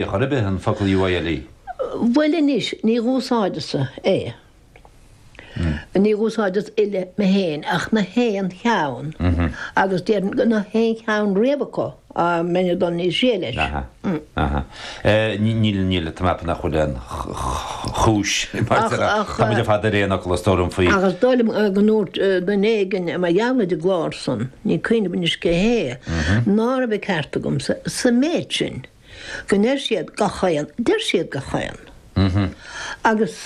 Ar chor ar bith, an focal UILE? Bhuel anois, ní úsáidimse é. Ní úsáidim uile mé fhéin ach na haon cheann agus déarfainn go na haon cheann riamh acu, mara bhfuil dul níos sia leis. Aha. Aha. Níl, níl, tá mé ag ceapadh nach bhfuil aon chúis, mar a deir, tá muid ar fad ar aon fhocal, is dóigh, faoi. Ach is dóigh liom go ndúirt duine éigin mar gheall ar an gclár san, ní cuimhin liom anois cé hé, nárbh ceart agamsa an méid sin, go ndeir siad gachaon, deir siad gach aon. Agus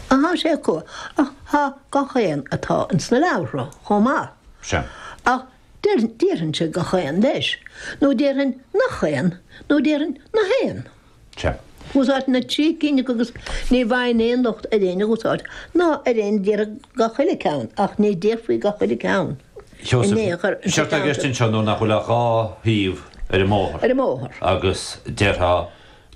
tá sé acu, ach tá gach aon, tá ins na leabhartha chomh maith. Sea. Ach déarfainnse gach aon leis, nó déarfainn nach aon, nó déarfainn na haon. Cha. Úsáidtear na trí cinn agus ní bhfaighinn aon locht ar éinne á n-úsáid, ná ar éinne a déarfadh gach uile ceann, ach ní déarfainn gach uile ceann in aon chor. Séard atá i gceist anseo nuair nach bhfuil ach dhá thaobh ar an mbóthar. Ar an mbóthar. Agus déarfá,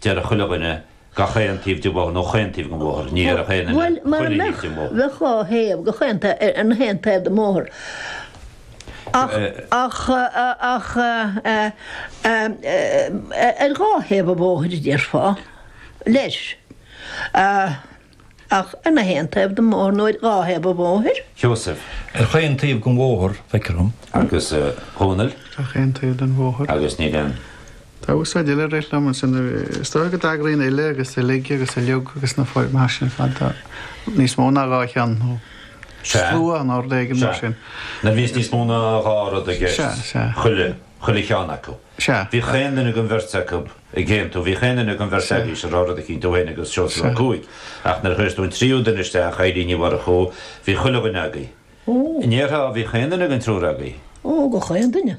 déarfadh chuile dhuine, gach aon taobh den bhóthar nó chaon taobh den bhóthar, ní dhéarfadh aon duine chuile thaobh den bhóthar. Bhuel, mara mbeadh, bheadh dhá thaobh, gach aon taobh, ar na haon taobh den mbóthar. Ach ar dhá thaobh an bhóthair, a déarfá, leis. Ach ar na haon taobh den mbóthar nó ar dhá thaobh an bhóthair? Sheosaimh, Ar chaon taobh den bhóthar, feictear dom. Agus Dhónaill? Ar chaon taobh den bhóthar. Agus níl aon. Tá úsáid eile a rith liom ansin. Is dóigh go dtagraíonn uile agus uilig agus uiliog agus na foirmeacha sin ar fad do níos mó ná dhá cheann nó. Sea. Slua nó ard éigin mar sin. Sea. Nuair a bhíos níos mó ná dhá rud i gceist. Sea, sea. Chuile, chuile cheann acu. Sea. Bhí chaon duine den bheirt agaibh ag aontú, bhí chaon duine den bheirt agaibh ag rá rud eicínt thú féin agus Seosamh Ó Cuaig. Ach nuair a chuireas tú an tríú duine isteach, Caitlín Ní Mhurchú, bhí chuile dhuine agaibh. Ó! An ndéarfá bhí chaon duine den triúr agaibh? Ó, gach aon duine.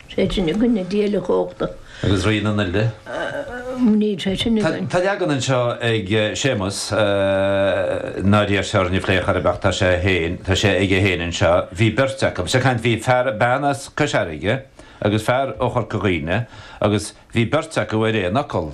Tréith sin i gcoinne na díolachóchta. Agus Rí na nUile. Mhnaoi tréith sin i gcoinne. Tá leagan anseo ag Séamus, nár fhéadamar a phlé ar chor ar bith, tá sé féin, tá sé aige féin anseo, bhí beirt acu, ar sé, ag caint, bhí fear, bean as Cois Fharraige agus fear ó Chorca Dhuibhne agus bhí beirt acu ar aon fhocal.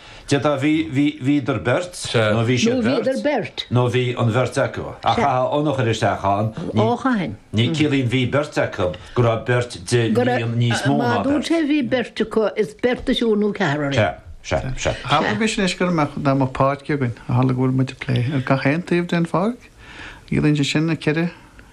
D'fhéadfadh 'bhí, bhí, bhíodar beirt', nó 'bhí siad beirt', nó 'bhí an bheirt acu'. Ach chaithfeadh an t-alt a chur isteach ann, mar ciallaíonn 'bhí beirt acu' go raibh beirt de líon níos mó ná beirt. Má dúirt sé 'bhí beirt acu', is beirt as triúr nó ceathrar é. Sea, sea, sea. Abraimis anois go raibh dá mba páirc a bheadh againn, tharla go bhfuil muid ag plé le gach aon taobh den pháirc, ciallaíonn sé sin ceithre,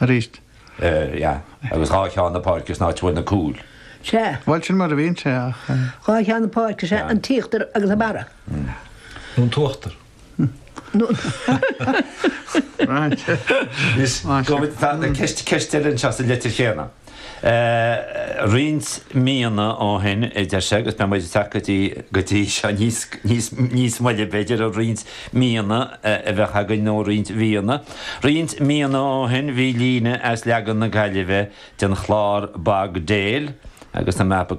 Arís. Yeah. Agus dhá cheann na páirce san áit a bhfuil na cúil. Sea. Bhuel, sin mar a bhíonn sé, ach. Dhá cheann na páirce is ea an t-íochtar agus an barra. Nó an t-uachtar. Nó an. Right. Is go bhfuil. Tá ceist, ceist eile anseo sa litir chéanna. Roinnt míonna ó shin, a deir sé, agus beidh muid ag teacht go dtí seo níos moille, b'fhéidir, ó roinnt míonna ab cheart againn nó ó roinnt mhíonna. Roinnt míonna ó shin bhí líne as leagan na Gaillimhe den chlár Bog Dale agus an mapa go